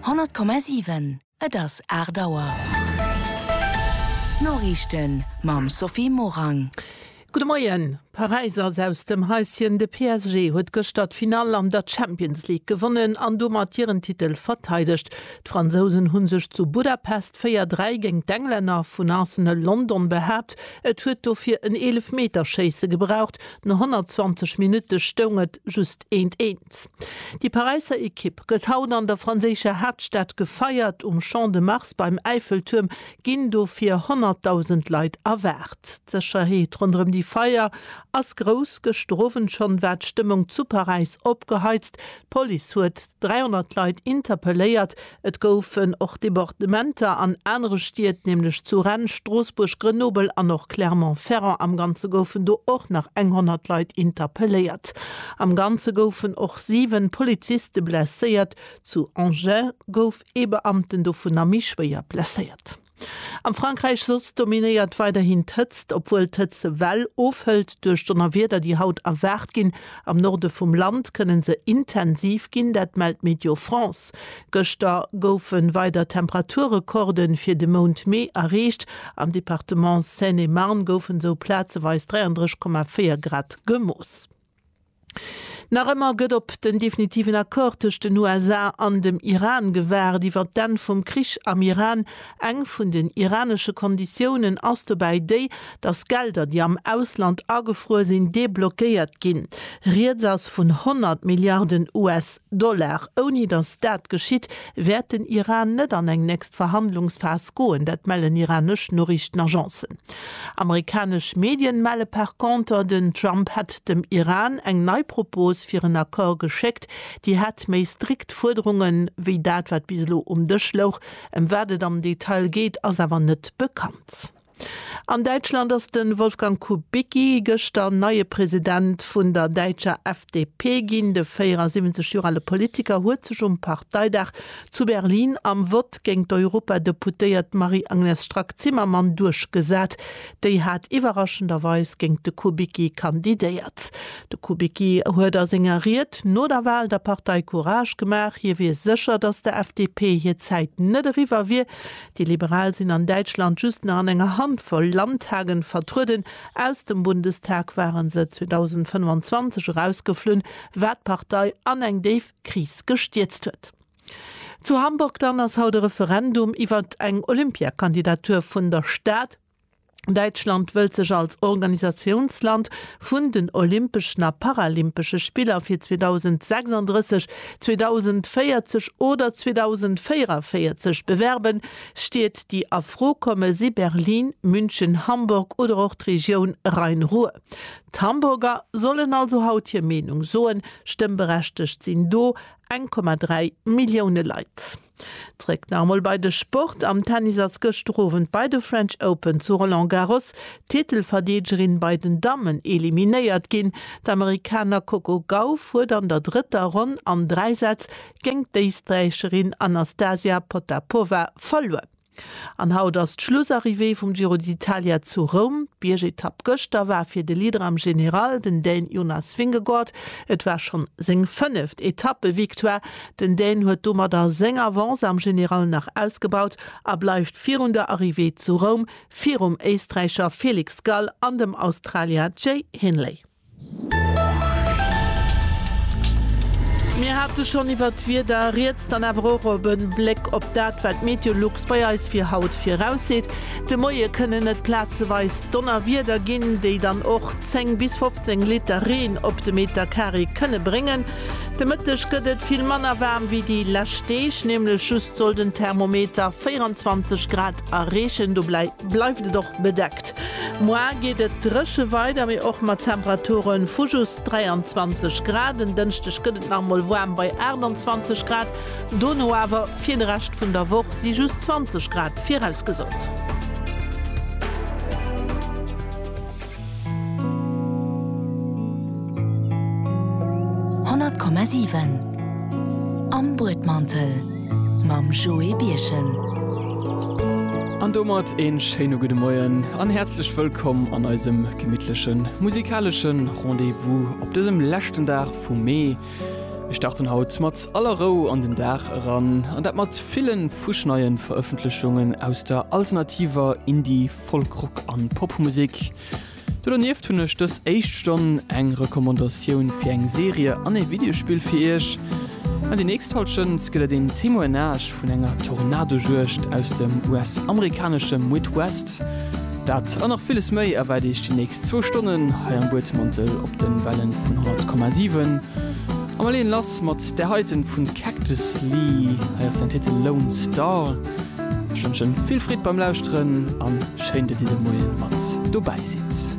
100,7, Et ass 8 Auer. D'Noriichten mam Sophie Morang. Gudde Moien. Paräis ass aus dem Häischen. De PSG huet gëschter d'Finall an der Champions League gewonnen an domat hiren Titel verteidegt. D'Fransousen hu sech zu Budapest 4, 3 géint d'Englänner vun Arsenal London behaapt. Et huet dofir en Eelefmeterschéisse gebraucht. No 120 Minutte stoung et just 1, 1. Events. Déi Paräisser Ekipp gëtt haut an der franséischer Haaptstad gefeiert. Um Champ de Mars beim Äiffeltuerm ginn dofir 100.000 Leit erwaart. D'Sécherheet ronderëm déi Feier ass grouss. Gëschter Owend schonn war d'Stëmmung zu Paräis opgeheizt. D'Police huet 300 Leit interpelléiert. Et goufen och Debordementer an anere Stied, nämlech zu Rennes, Stroossbuerg, Grenoble an och Clermont-Ferrand. Am Ganze goufen do och nach eng 100 Leit interpelléiert. Am Ganze goufen och 7 Poliziste blesséiert. Zu Angers gouf ee Beamten dovunner méi schwéier blesséiert. Am Frankräich soss dominéiert weiderhin d'Hëtzt, obwuel d'Hëtzewell ofhëlt duerch d'Donnerwieder, déi haut erwaart ginn. Am Norde vum Land kënne se intensiv ginn, dat mellt Météo France. Gëschter goufe weider Temperaturrekorde fir de Mount Mee erreecht. Am Departement Seine-et-Marne goufen esou plazeweis 33,4 Grad gemooss. Nach ëmmer gëtt op den definitiven Accord tëscht den USA an dem Iran gewaart. Iwwer d'Enn vum Krich am Iran. Eng vun den iranesche Konditiounen ass dobäi déi, datt Gelder, déi am Ausland agefruer sinn, deblockéiert ginn. Rieds ass vun 100 Milliarden US. Dollar. Ouni datt dat geschitt, wäert den Iran net an eng nächst Verhandlungsphas goen, dat mellen iranesch Noriichtenagencen. Amerikanesch Medien melle par conter, den Trump hätt dem Iran eng nei Propos fir en Accord geschéckt, déi hätt méi strikt Fuerderungen, wéi dat wat bis elo um Dësch louch. Ëm wat et am Detail geet, ass awer net bekannt. An Däitschland ass de Wolfgang Kubicki gëschter neie President vun der däitscher FDP ginn. De 74 Joer ale Politiker huet sech um Parteidag zu Berlin am Vott géint d'Europadeputéiert Marie-Agnes Strack-Zimmermann duerchgesat. Déi hat iwwerraschenderweis géint de Kubicki kandidéiert. De Kubicki huet a senger Ried no der Wal der Partei Courage gemaach. Hie wier sécher, datt der FDP hir Zäit net eriwwer wier. Déi Liberal sinn an Däitschland just nach an enger Handvoll Landtagen vertrueden. Aus dem Bundestag waren se 2025 erausgeflunn, wat d'Partei an eng déif Kris gestierzt huet. Zu Hamburg dann ass haut e Referendum iwwert eng Olympiakandidatur vun der Stad. Däitschland wëllt sech als Organisatiounsland vun den Olympeschen a Paralympesche Spiller fir 2036, 2040 oder 2044 bewerben, Stied déi a Fro komme si Berlin, München, Hamburg oder och d'Regioun Rhein-Ruhr. D'Hamburger sollen also haut hir Meenung soen, stëmmberechtegt sinn do 1,3 Millioune Leit. Zréck nach emol bei de Sport, Am Tennis ass gëschter Owend bei de French Open zu Roland Garros d'Titelverdeegerin bei den Dammen eliminéiert ginn. D'Amerikaner Coco Gauff huet an der drëtter Ronn an dräi Sätz géingt d'Éisträicherin Anastasia Potapova verluer. An haut ass d'Schlussarrivée vum Giro d'Italia zu Roum. D'Biergetapp gëschter war fir de Leader am General, den Dän Jonas Vingegaard. Et war schonn seng fënneft Etappevictoire. Den Dän huet domadder seng Avance am General nach ausgebaut a bleift virun der Arrivée zu Roum virum Éisträicher Felix Gall an dem Australier Jay Hindley. Mir hate schonn iwwert d'Wieder rieds, dann awer och op e Bléck op dat, wat Meteolux bei eis fir haut virausseet. De Moie kënnen et plazeweis Donnerwieder ginn, déi dann och 10 bis 15 Liter Reen op de Meter Carré kënne bréngen. De Mëtteg gëtt et vill manner waarm wéi déi lescht Deeg, nämlech just soll den Thermometer 24 Grad erreechen. Do bleift et och bedeckt. Moar geet et dréche weider, mee och mat Temperature vu just 23 Grad. En Dënschdeg gëtt et nach emol waarm bei 28 Grad, dono awer fir de Rescht vun der Woch si just 20 Grad virausgesot. Honnert Komma siwen am Buedmantel. mam Joé Birchen. An domat ee schéine gudde Moien an häerzlech wëllkomm an eisem gemittlechen musikaleschen Rendez-vous op dësem leschten Dag vum Mee. Mir starten haut mat aller Rou an den Dag eran an dat mat villen fuschneien Verëffentlechungen aus der alternativer Indie-, Folk-, Rock an Popmusik. Do dernieft hunn ech dës éischt Stonn eng Recommandatioun fir eng Serie an ee Videospill fir iech. An déi nächst hallef Stënns gëtt et een Témoignage vun enger Tornadojuegd aus dem US-amerikanesche Midwest. Dat an nach villes méi erwaart iech déi nächst zwou Stonnen hei am Buedmantel op den Wellen vun 100,7. A mer leeën lass mat där heiten vun Cactus Lee. Hei ass den Titel Lone Star. Ech wënschen vill Freed beim Lauschteren an schéin dat dir de Moien mat dobäi sidd.